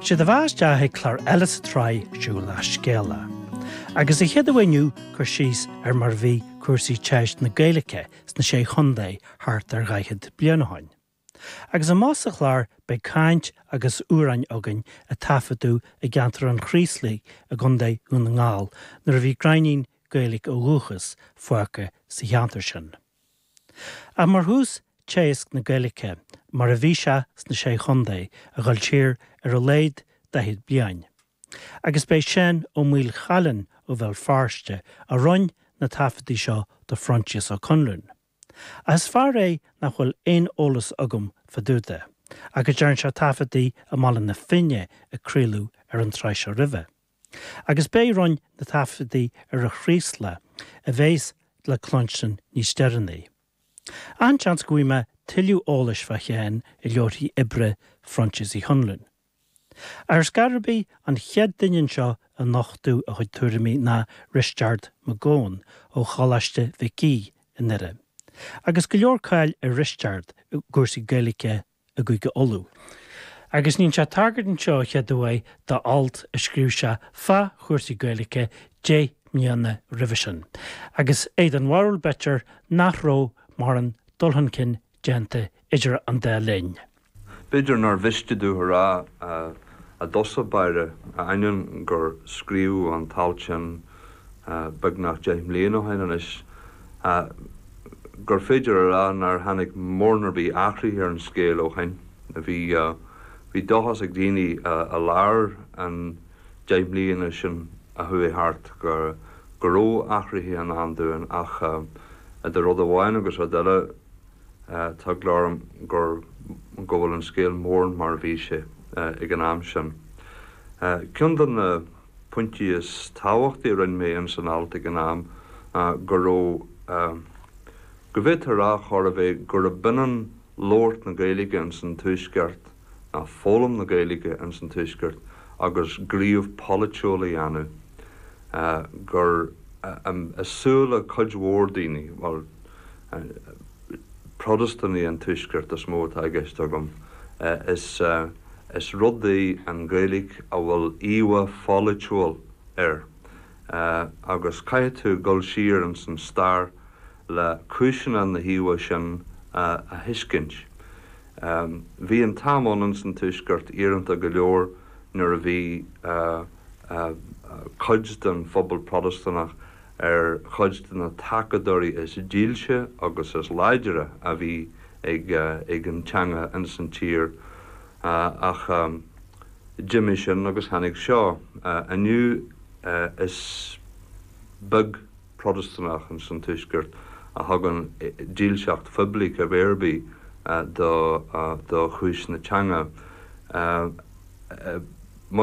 Is é do bheatha isteach chuig clár eile sa tsraith Siúlach Scéalach, agus an chéad ní inniu, cur síos ar mar a bhí cúrsaí teist na Gaeilge sna Sé Chontae thart ar dhaichead bliain ó shin. Agus amach sa chlár beidh caint agus amhráin againn a taifeadadh i gceantar an Chraoslaigh i gContae Dhún na nGall nuair a bhí gráinnín Gaeilge ó dhúchas, fágtha sa cheantar sin. Ach mar thús, teagasc na Gaeilge, mar a bhí sé sna Sé Chontae, a dhul siar ar a laghad daichead bliain. Agus b'é Seán Ó Maolchalann ó Bhéal Feirste a rinn na taifeadtaí seo do Phroinsias Ó Conluain. Ach is fear é nach bhfuil aon eolas agam fá dtaobh de, ach go dtearn sé taifeadtaí i mBaile na Finne a craoladh ar an tsraith seo roimhe. Agus b'é a rinn na taifeadtaí ar an Chraoslach, a bheas le cluinstin níos deireanaí. An-seans go bhfaighidh mé tuilleadh eolais fá Sheán i leabharthaí oibre Phroinsias Uí Chonluain. Ar scor ar bith an chéad duine anseo ag nochtadh a chuid tuairimí ná Risteárd Mac Eoin ó Choláiste Mhic Aoidh i nDoire, agus go leor cáile ar Risteárd i gcúrsaí Gaeilge i gCúige Uladh, agus ní sé tagairt anseo an chéad uair do alt a scríobh sé fá chúrsaí Gaeilge deich mbliana roimhe sin, agus é den bharúil, b'fhéidir, nach raibh mórán dul chun cinn déanta idir an dá linn. B'fhéidir nár mhiste domh a rá i dtosach báire, ainneoin gur scríobhadh an t-alt sin, beagnach deich mbliain ó shin anois, gur féidir a rá nár tháinig mórán ar bith athraithe ar an scéal ó shin. Bhí dóchas ag daoine i lár an deich mbliana sin a chuaigh thart go raibh athruithe i ndán dúinn ach idir rud amháin agus rud eile tá eagla orm go bhfuil an scéal mórán mar a bhí sé ag an am sin. Cionn de na. pointí is tábhachtaí a rinn mé in san alt ag an am ná go raibh go bhféadfaí a rá chóir a bheith gurb ionann labhairt na Gaeilge in san Tuaisceart, nó foghlaim na Gaeilge in san Tuaisceart, agus gníomh polaitiúil a dhéanamh, gur i súile cuid mhór daoine, bhuel, Protastúnaigh an Tuaiscirt is mó atá i gceist agam, is. Is rud í an Ghaeilge a bhfuil íomha pholaitiúil air agus caithfidh tú dul siar ins an stair le cúiseanna na híomha sin a thuiscint. Bhí an t-am ann ins an tuaisceart íoronta go leor nuair a bhí cuid den phobal Protastúnach ar chuid de na tacadóirí is dílse agus is láidre a bhí ag an teanga ins an tír ach d'imigh sin agus tháinig seo. Inniu is beag Protastúnach ins an Tuaisceart a thugann dílseacht phoiblí pé ar bith do chúis na teanga.